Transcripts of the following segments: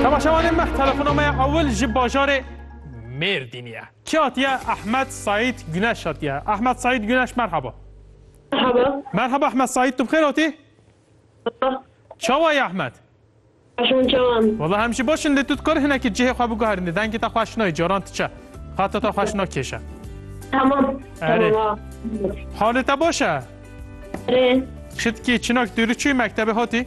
Temaşevanên me telefona me ya ewil ji bajarê Mêrdînê ye. Kî hatiye? Ehmed Saîd Guneş hatiye. Ehmed Saîd Guneş merhaba. Merhaba. Merhaba Ehmed Saîd tu bi xêr hatî? Çawa ye Ehmed? Baş hûn çawa in? Wala hem jî baş in lê tu dikar hinekî cihê xwe biguherînî dengê te xweş nayê caran diçe. Xeta te xweş nakêşe. Tamam. Erê. Tamam. Halê te baş e? Erê. Şitkî çinak dûrî çûyî mektebê hatî?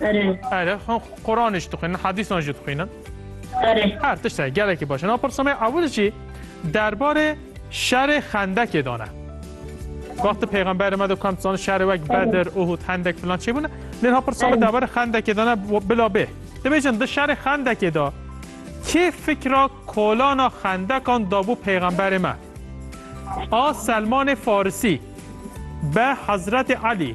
Erê. Erê, xo Kur'anê jî dixwînin, hadîsan jî dixwînin. Erê. Her tişt heye, gelekî baş e. Na pirsa me ya ewil jî derbarê şerê Xendekê dan e. Wextê Peyxemberê me de kam dizane şerê wek Bedir, Uhud, Hendek filan çê bûne. Lê na pirsa me derbarê Xendekê dan e bo- bila bê. Dibêjin di şerê Xendekê de kê fikra kolana Xendekan dabû Peyxemberê me? A Selmanê Farisî, B Hezretê Elî,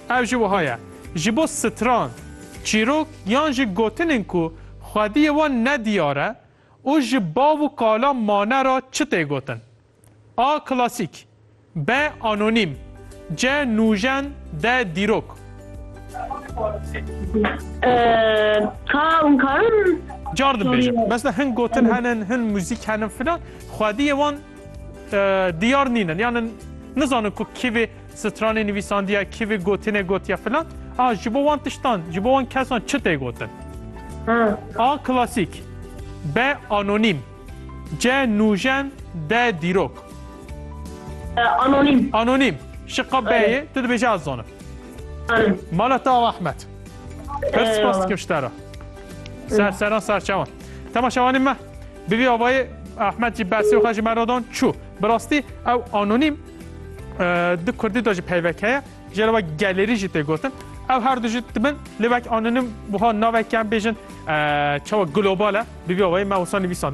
Ev jî wiha ye, ji bo stran, çîrok yan jî gotinên ku xwediyê wan ne diyar e û ji bav û kala mane re çi tê gotin. A klasîk, B anonîm, C nûjen, D dîrok. K hûn karin? Cardim bêjin. Mesela hin gotin henin, hin muzîk henin filan, xwediyê wan diyar nînin. Yan nizanin ku kîvê Stranê nivîsandiya kivê gotinê gotiya filan, a ji bo wan tiştan, ji bo wan kesan çi tê gotin? A klasîk, B anonîm, C nûjen, D dîrok. Anonîm. Anonîm. Şiqa B yê, tu dibêjî ez zanim. Zanim. Mala te awa Ahmet. Pir spas dikim ji te re. Serseran serçewan. Temaşevanê me. Bi vî avayê Ahmet jî bersê xwe ji me re dan çû. Bi rastî ew anonîm di kurdî de jî peyvek heye, jê re ve gelerî jî tê gotin. Ew her du jî dibin lê wek anonîm wiha navek yan bêjin çawa global e, bi vî awayî me wisa nivîsand.